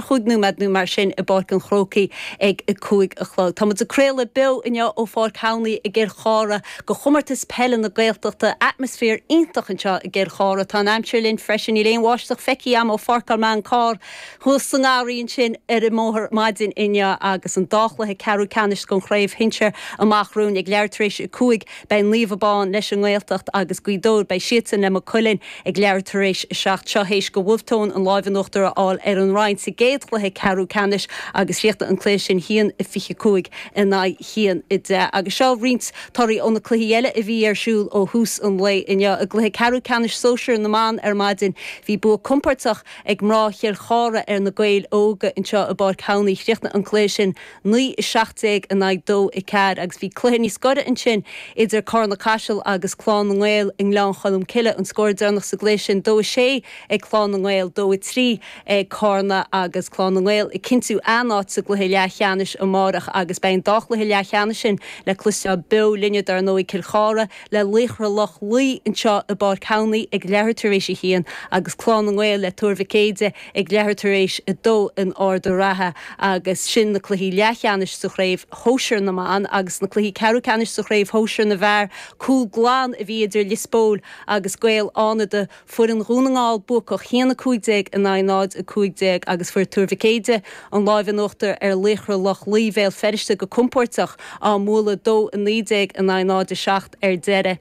chúig nóiméad nó mar sin i bPáirc an Chrócaigh ag a cúig a chlog. Tá muid ag craoladh beo inniu ó Pháirc Thamhnaigh i gCill Chartha go Chomórtas Peile na Gaeltachta. Atmaisféar iontach anseo i gCill Chartha. Tá an aimsir linn freisin, níl aon bháisteach feicthe agam ó pháirceáil mé an carr thuas sa ngarraí ansin ar an mbóthar maidin inniu agus an dá chluiche ceathrú ceannais den chraobh shinsir amach romhainn ag leathuair tar éis a cúig Beidh Naomh Abán leis an nGaeltacht agus Gaoth Dobhair, beidh siadsan le Maigh Cuilinn ag leathuair tar éis a seacht seo théis go Bhulf Tón an láimh in uachtar a fháil ar an Rinn sa gcéad chluiche ceathrú ceannais agus chríochnaigh an cluiche sin haon 25 in aghaidh haon 10 agus seo roinnt torthaí ó na cluichí eile a bhí ar siúl ó thús an lae inniu. I gcluiche ceathrú ceannais sóisear na mban ar maidin bhí bua compordach ag mná Chill Chartha ar na Gaeil Óga anseo i bPáirc Thamhnaigh. Chríochnaigh an cluiche sin. naoi a seacht déag in aghaidh dó a ceathair agus bhí cluiche níos gaire ansin idir Carna Caiseal agus Clann na nGael i nGleann Cholm Cille an scór deireanach sa gcluiche sin, dó a sé ag Clann na nGael, dó a trí ag Carna agus Clann na nGael ag cinntiú a n-áit sa gcluiche leathcheannais amárach agus beidh an dá chluiche leathcheannais sin le cloisteáil beo linne dar ndóigh Cill Chartha le Laochra Loch Lao anseo i bPáirc Thamhnaigh ag leathuair tar éis a haon agus Clann na nGael le Tuar Mhic Éadaigh ag leathuair tar éis a dó in Ard an Rátha agus sin na cluichí leathcheannais sa chraobh shóisir na mban agus na cluichí ceathrú ceannais sa chraobh shóisir na bhfear. Cúl glan a bhí idir Lios Póil agus Gaeil Fhánada, foireann Dhún na nGall buacach haon 15 in aghaidh 0, 15, agus fuair Tuar Mhic Éadaigh an láimh in uachtar ar Laochra Loch Lao Bhéal Feirste go compóirteach, á mbualadh 2, 19 in aghaidh 0, 7 ar deireadh.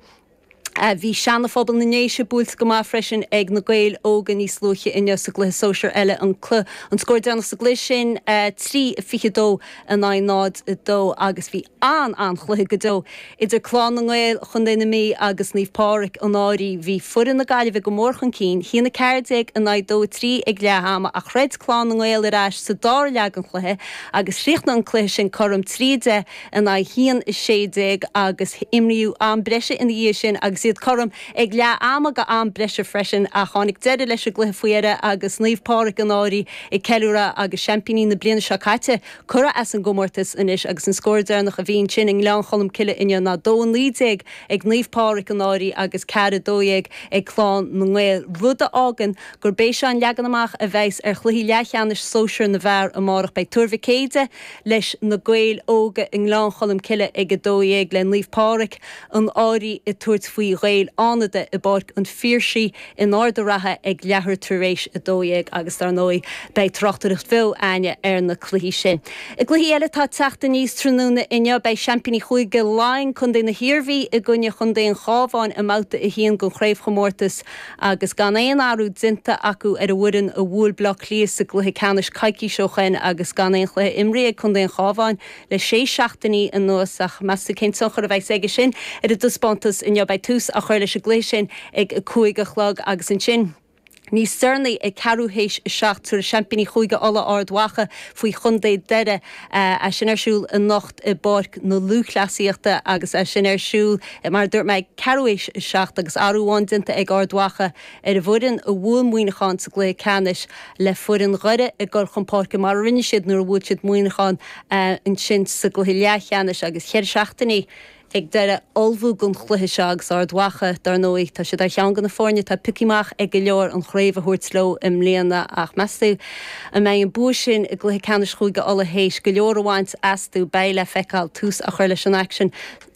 Bhí Seana-Phobal na nDéise buailte go maith freisin ag na Gaeil Óga níos luaithe inniu sa gcluiche sóisear eile, an an scór déanach sa gcluiche sin, 3, 22 in aghaidh 0, 2, agus bhí an-an-chluiche go deo idir Clann na nGael, Chontae na Mí, agus Naomh Pádraic, An Fhairche. Bhí foireann na Gaillimhe go mór chun cinn, haon, 14 in aghaidh 2, 3 ag leath ama, ach throid Clann na nGael ar ais sa dara leath den chluiche agus chríochnaigh an cluiche sin cothrom, 3, 10 in aghaidh haon 16 agus imríodh am breise ina dhiaidh sin agus iad cothrom ag leath ama go am breise freisin ach tháinig deireadh leis an gcluiche faoi dheireadh agus Naomh Pádraig An Fhairche ag ceiliúradh agus seaimpíní na bliana seo caite curtha as an gcomórtas anois agus an scór deireanach a bhí ansin i nGleann Cholm Cille inniu ná 2 19 ag Naomh Pádraig An Fhairche agus 4 12 ag Clann na nGael rud a fhágann gurb é seo an leagan amach a bheidhs ar chluichí leathcheannais sóisear na bhfear amárach beidh Tuar Mhic Éadaigh leis Na Gaeil Óga i nGleann Cholm Cille ag 12:00 le Naomh Pádraig, An Fhairche ag tabhairt faoi Ghaeil Fhánada i bPáirc an Phiarsaigh in Ard an Rátha ag leathuair tar éis 12 agus dar ndóigh beidh tráchtaireacht bheo a'ainne ar na cluichí sin. I gcluichí eile atá ag teacht aníos tráthnóna inniu beidh seaimpíní Chúige Laighean, Contae na hIarmhí i gcoinne Chontae an Chábháin i mbabhta a haon den chraobhchomórtas, agus gan aon athrú déanta acu ar an bhfoireann a bhuail Bleá Cliath sa gcluiche ceannais coicís ó shin agus gan aon chluiche imrithe ag contae an Chábháin le sé seachtainí anuas ach meas tú cén tionchar a bheas aige sin ar a dtaispeántas inniu? Beidh tús á chur leis an gcluiche sin ag a cúig a chlog agus ansin, níos deireanaí, ag ceathrú théis a seacht, tabharfaidh seaimpíní Chúige Uladh, Ard Mhacha, faoi chontae Dhoire. é sin ar siúl anocht i bPáirc na Lúthchleasaíochta agus é sin ar siúl, mar a dúirt mé, ag ceathrú théis a seacht agus athrú amháin déanta ag Ard Mhacha ar an bhfoireann a bhuail Muineachán sa gcluiche ceannais le foireann Dhoire ag dul chun páirce mar a rinne siad nuair a bhuail siad Muineachán ansin sa gcluiche leathcheannais agus cheithre seachtainí ag Doire ag ullmhú don chluiche seo agus Ard Mhacha, dar ndóigh, tá siad ar cheann de na foirne atá pioctha amach ag go leor an chraobh a thabhairt leo i mbliana ach meas tú an mbeidh an bua sin i gcluiche ceannais Chúige Uladh théis go leor a bhaint astu? Beidh le feiceáil. Tús á chur leis an aicsean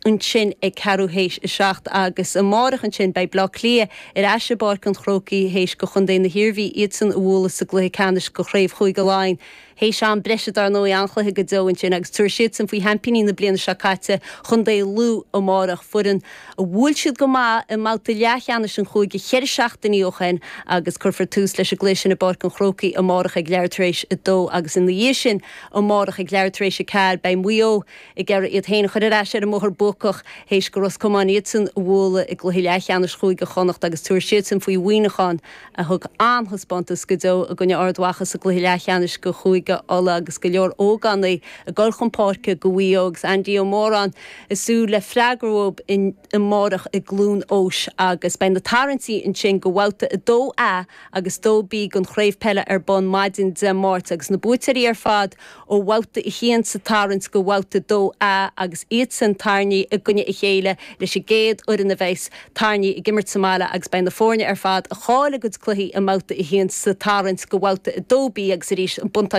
ansin ag ceathrú théis a seacht agus amárach ansin beidh Bleá Cliath ar ais i bPáirc an Chrócaigh théis go chontae na hIarmhí iadsan a bhualadh sa gcluiche ceannais do chraobh Chúige Laighean. Théis am breise dar ndóigh, an-chluiche go deo ansin agus tabharfaidh siadsan faoi sheaimpíní na bliana seo caite, Contae Lú, amárach, foireann a bhuail siad go maith i mbabhta leathcheannais an chúige ceithre seachtainí ó shin agus cuirfear tús leis an gcluiche sin i bPáirc an Chrócaigh amárach ag leathuair tar éis a dó agus ina dhiaidh sin amárach ag leathuair tar éis a ceathair beidh Maigh Eo ag iarraidh iad féin a chur ar ais ar an mbóthar buacach théis go Ros Comáin iadsan a bhualadh i gcluiche leathcheannais Chúige Chonnacht agus tabharfaidh siadsan faoi Mhuineachán a thug an-taispeántas go deo i gcoinne Ard Mhacha sa gcluiche leathcheannais do Chúige Uladh agus go leor ógánaigh ag dul chun páirce go Mhaigh Eo agus Andy Ó Móráin ag súil le freagra uathu amárach i gCluain Eois agus beidh na tarraingtí ansin go bhabhta 2A agus 2B den chraobh peile ar bun maidin Dé Máirt agus na buaiteoirí ar fad ó bhabhta a haon sa tarraingt go bhabhta a dó A agus iadsan tarraingthe i gcoinne a chéile leis an gcéad fhoireann a bheas tarraingthe ag imirt sa mbaile agus beidh na foirne ar fad a chaill a gcuid cluichí i mbabhta a haon sa tarraingt go bhabhta a dó B agus arís an